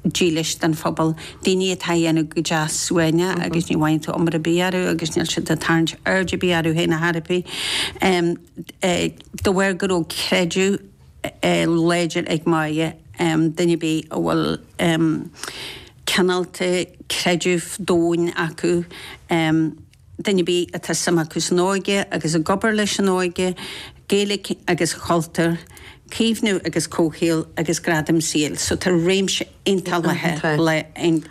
dílis don phobal, daoine atá á dhéanamh go deas suaimhneach agus ní bhfaigheann tú iomrá ar bith orthu agus níl siad ag tarraingt aird ar bith orthu féin ar chor ar bith. De bharr go raibh creideamh láidir ag Moya, duine ar bith a bhfuil cineál de creideamh domhain acu, Duine ar bith atá suim acu san óige agus ag obair leis an óige, Gaeilge agus a chultúr, caomhnú agus comhshaol agus gradam saoil. So tá réimse iontach leathan le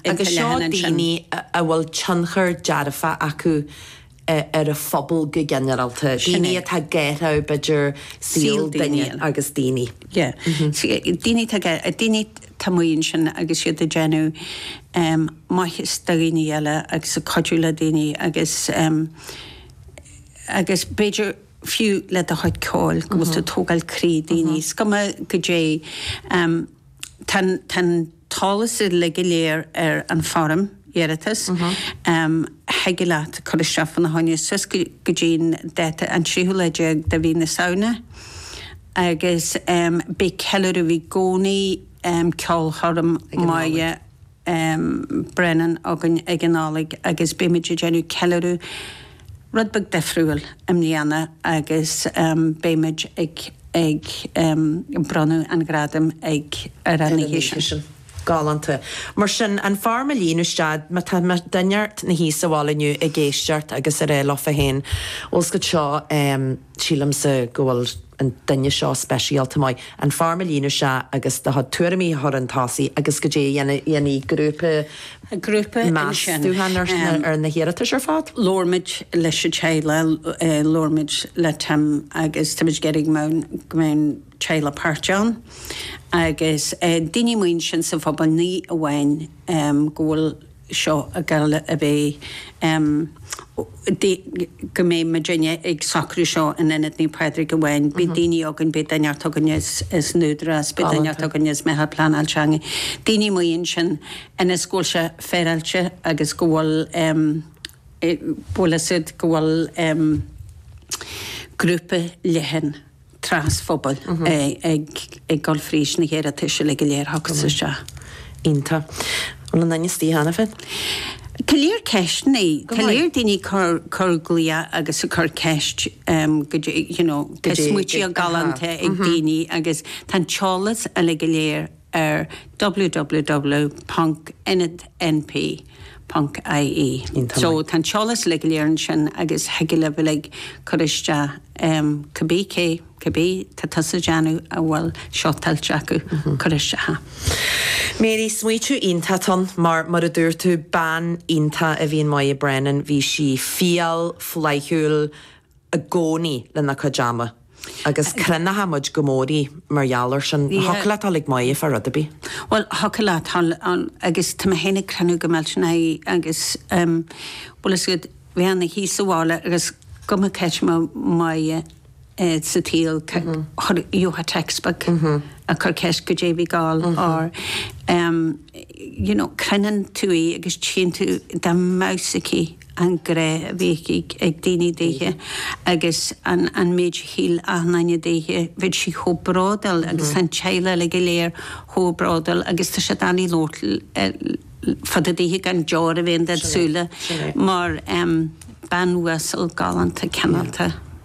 Agus seo daoine a bhfuil tionchar dearfach acu ar an phobal go ginearálta, daoine atá ag athrú b'fhéidir saol duine agus daoine. Yeah. Daoine atá ag athrú daoine. atá amuigh ansin agus iad ag déanamh maitheas do dhaoine eile agus ag cuidiú le daoine agus, agus b'fhéidir fiú le do chuid ceoil go bhfuil tú ag tógáil croí daoine. Is cuma goidé, tá an t-eolas uilig go léir ar an foirm. iarratais, thig leat cur isteach faoina choinne suas go dtí'n dáta an tríú lá déag de mhí na Samhna agus beidh ceiliúradh, bhí i gcónaí ceolchoirm Moya Brennan againn ag an Nollaig agus beidh muid ag déanamh ceiliúradh rud beag difriúil i mbliana agus beidh muid ag bronnadh an ghradaim ar an oíche sin. Galánta. Mar sin, an fhoirm a líonadh isteach, má tá duine ar bith ina shuí sa bhaile inniu ag éisteacht agus ag rá leofa féin, bhfuil a fhios agat seo, sílimse go bhfuil an duine seo speisialta maith, an fhoirm a líonadh isteach agus do chuid tuairimí a chur 'un tosaigh agus goidé a dhéanfaidh grúpa meastúchán ar na hiarratais ar fad. Labhair muid leis an teaghlach, labhair muid le Tim agus tá muid ag iarraidh go mbeidh an. teaghlach páirteach ann agus daoine amuigh ansin sa phobal ní amháin go bhfuil seo ag gabháil a bheith go mbeidh muidinne ag socrú seo in Ionad Naomh Pádraig amháin, beidh daoine againn, beidh duine inteacht againn as an Údarás, beidh duine inteacht againn as Meitheal Pleanála Teanga. Daoine amuigh ansin ionas go bhfuil sé féaráilte agus go bhfuil bhfuil a fhios agat go bhfuil grúpa leathan, trasphobail ag dul fríd na hiarratais uilig go léir a thiocfas isteach. Iontach. An bhfuil aon duine istigh cheana féin? Tá lear ceisteanna. Tá lear daoine ag cur glaoch agus ag cur ceist goidé you know tá smaoití galánta ag daoine agus tá an t-eolas uilig go léir ar www.ionadnp.ie. So tá an t-eolas uilig go léir ansin agus thig libh uilig cur isteach cibé cé, cibé atá tusa ag déanamh a bhfuil seo tuillte acu cur isteach ann. Mary, smaoitiú iontach ann mar, mar a dúirt tú, bean iontach a bhí in Moya Brennan, bhí sí fial, flaithiúil, i gcónaí lena cuid ama agus cronóidh muid go mór í mar gheall ar sin. Thiocfadh leat dul ag Moya fá rud ar bith. Bhuel, thiocfadh leat dul ann agus tá mé féin á cronú go millteanach agus bhfuil a fhios agat bheith ann a thíos sa bhaile agus cuma cén áit a mbeadh Moya sa tsaol gheofá text back ag cur ceist goidé a bhí ag gabháil or you know cronaíonn tú í agus tchíonn tú dá mbeadh sí. an grá a bhíodh ag daoine daoithe agus an méid a shíl achan duine daoithe, bheadh sí chomh bródúil agus an teaghlach uilig go léir chomh bródúil agus tá sé doiligh labhairt fá dtaobh daoithe gan deoir a bheith in do shúile mar bean uasal galánta cineálta.